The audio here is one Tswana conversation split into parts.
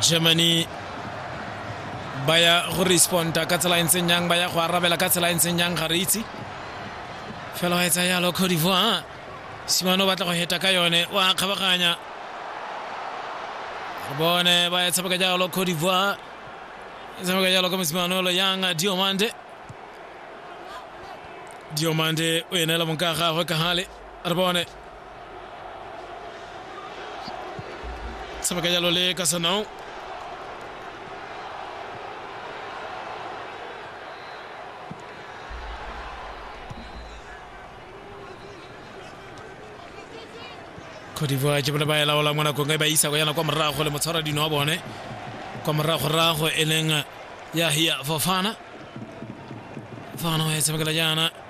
germany ba ya go responda ka tsela e ntseng yang ba ya go arabela ka tsela e ntseng yang ga re itse fela wa etsa yalo cote divoire simane o batla go heta ka yone wa kgabaganya re bone ba e tshameka jalo cote divoire e tshameka jalo ka mosimanolo yang diomande diomande o enela monka gagwe ka gale re bone se ba ka jalo le ka sanao khodivoa ke bone ba e laolang mo nakong e ba isa go yana kwa morago le motshwara dino wa bone kwa moragorago e leng ya hia fofana fofana o e tshamekela jaana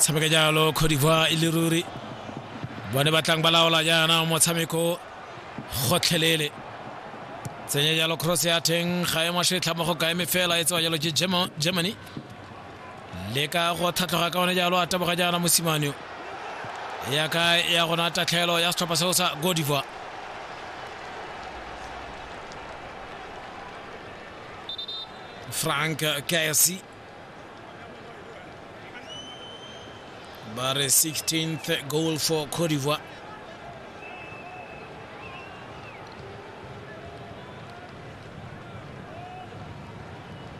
tshameka jalo cote d'ivoire e le ruri bone batlang ba laola jaana motshameko gotlhelele tsenya jalo cross ya teng ga e masetlha mo go kaeme fela e tsewa jalo ke germany leka go tlhatlhoga ka one jalo a taboga jaana mosimane ya ka ya gona tatlhelo ya setlhopha seo sa godiva frank kasi ba re 16th goal for cote d'ivoire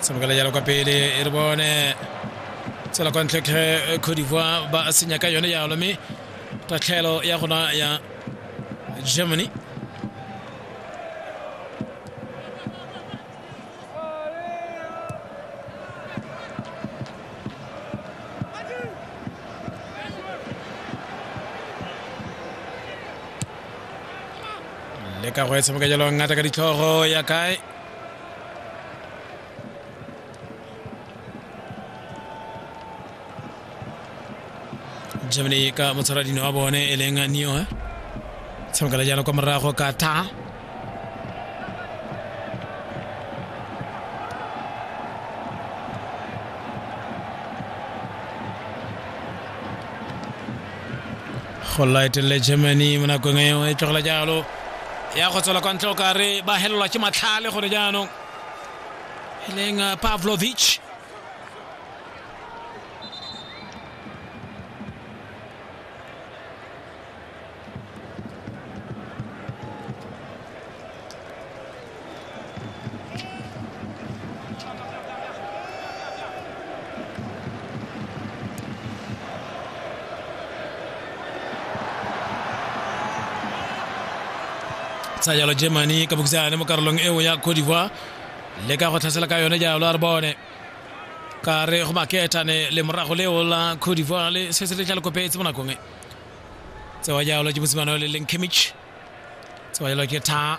tshamekela jalo kwa pele re bone tsela kwa ntlhetlhe cote d'ivoire ba senya ka yone jalo mme tatlhelo ya gona ya germany le ka go e tshameka jalo ngata ka ditlhogo ya kae germany ka motshwaradino wa bone e leng neo tshamekela jalo kwa morago ka ta go laetelele germany mo nakong eo e tlogela jalo ya go tswela kwa ntle o kare ba helelwa ke matlhale gore jaanong Healing uh, Pavlovic. sa yalo germany kabukisa ne mo karolong eo ya cote d'ivoire le ka go tlhasela ka yone jalo a re bone ka re go maketane le morago leo la cote divoire le se se le tla le kopetse mo nakong e tsewa jalo ke mosimane o le leng kimich tsewa jalo ke tha